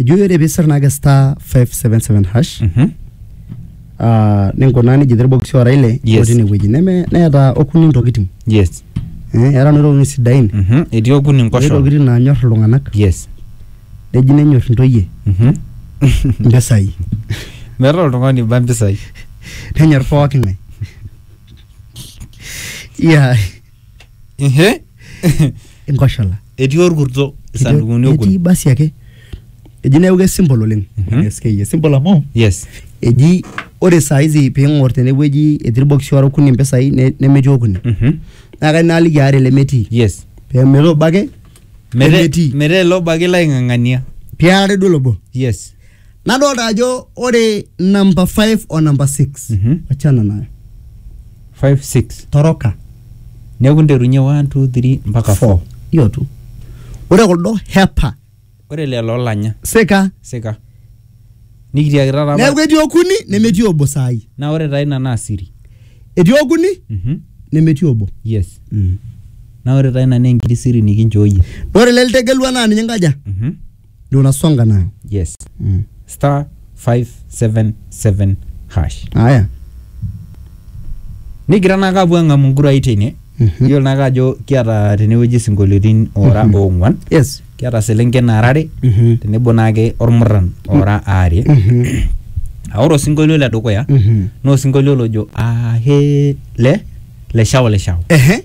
ejo ore pee isir naake star 577 hash Mhm. ah, ninkunaa nejia etii irbokisi oora ile Yes. otii inewueji neme neeta okuni ntokitin yes eh, eeta noo tokitin sidain Mhm. etii okuni etii nkosho ntokitin naanyor iltung'anak yes neji nenyor intoyie Mhm. impisai meeta oltung'ani ba mpisai nenyor pooki ng'ae yeah. Ehe. inkoshola etii orkurto isandukuni etii okuni basi ake eji neeku kesimple oleng Mhm. SK simple amu yes eji ore saa hizi piing'or tenewueji etii irbokisi ora okuni impisai ne- nemetii okuni Mhm. naa kai naaliki aare lemetii yes pemetaa obo ake Mete- lemetii metaa ele obo ake laing'ang'ania piarare duo lobo yes nadolta ajo ore number 5 o number 6 Mhm. achana nayo 5 6 toroka neeku nterunye 1 2 3 mpaka 4 hiyo tu ore kuldo hepa ore lelo olanya sika sika nikitiaki taata neeku apa- etii okuni nemetii obo saai naa ore taa ina naa siri etii okuni Mhm. nemetii obo yes mm. naa ore taa ina naa enkiti siri nikinchooyie ore ele litegelua naa ninye nkaja Mhm. ndio unasonga nayo yes mm. star 577 hash haya nigira naa kapuo ang'amu nkurai teine Mhm. iyiolo naake ajo kiata tenewueji isinkolioitin ora Mhm. oong'uan yes kiata selenken nara are Mhm. tenebo naake ormurran ora aare Mhm. aa ore osinkolio le dukuya Mhm. naa osinkolio lojo ahe le le shao le shao ehe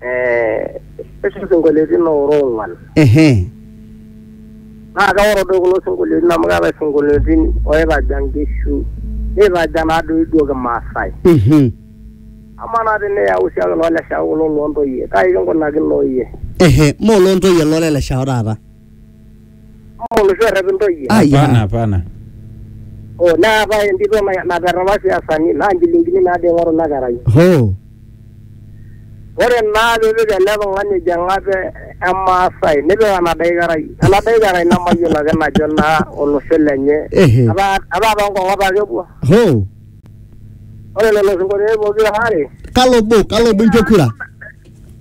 eh, etii isinkolioitin oora ong'uan ehe naa keoro doi kulo sinkolioitin amu keetae isinkolioitin oitaja nkishu neitaja naa doi duo kimaasai mhm amaa naa teniyau siake loo leshao kulo loontoyie kai kinkunakino iyie ehe moo loontoyie loo leleshao taata Ama oloshi orrep intoyie. Ai, Hapana, ah. hapana. Oh, neetae entito na- naper apa siasani naa nchilingini naado eing'oru ina kerai. Hoo. Ore naa piipik ele tung'ani ejo eng'ape emaasai nipik enadai kerai. Enadai kerai nemayiolo ake najo naa olosho lenye. Ehe. Ataa ataa toonkong'at ake epuo. Hoo. Ore lelo sinkolioitin pokira aare Kalo obo, kalo obo inchoo kura?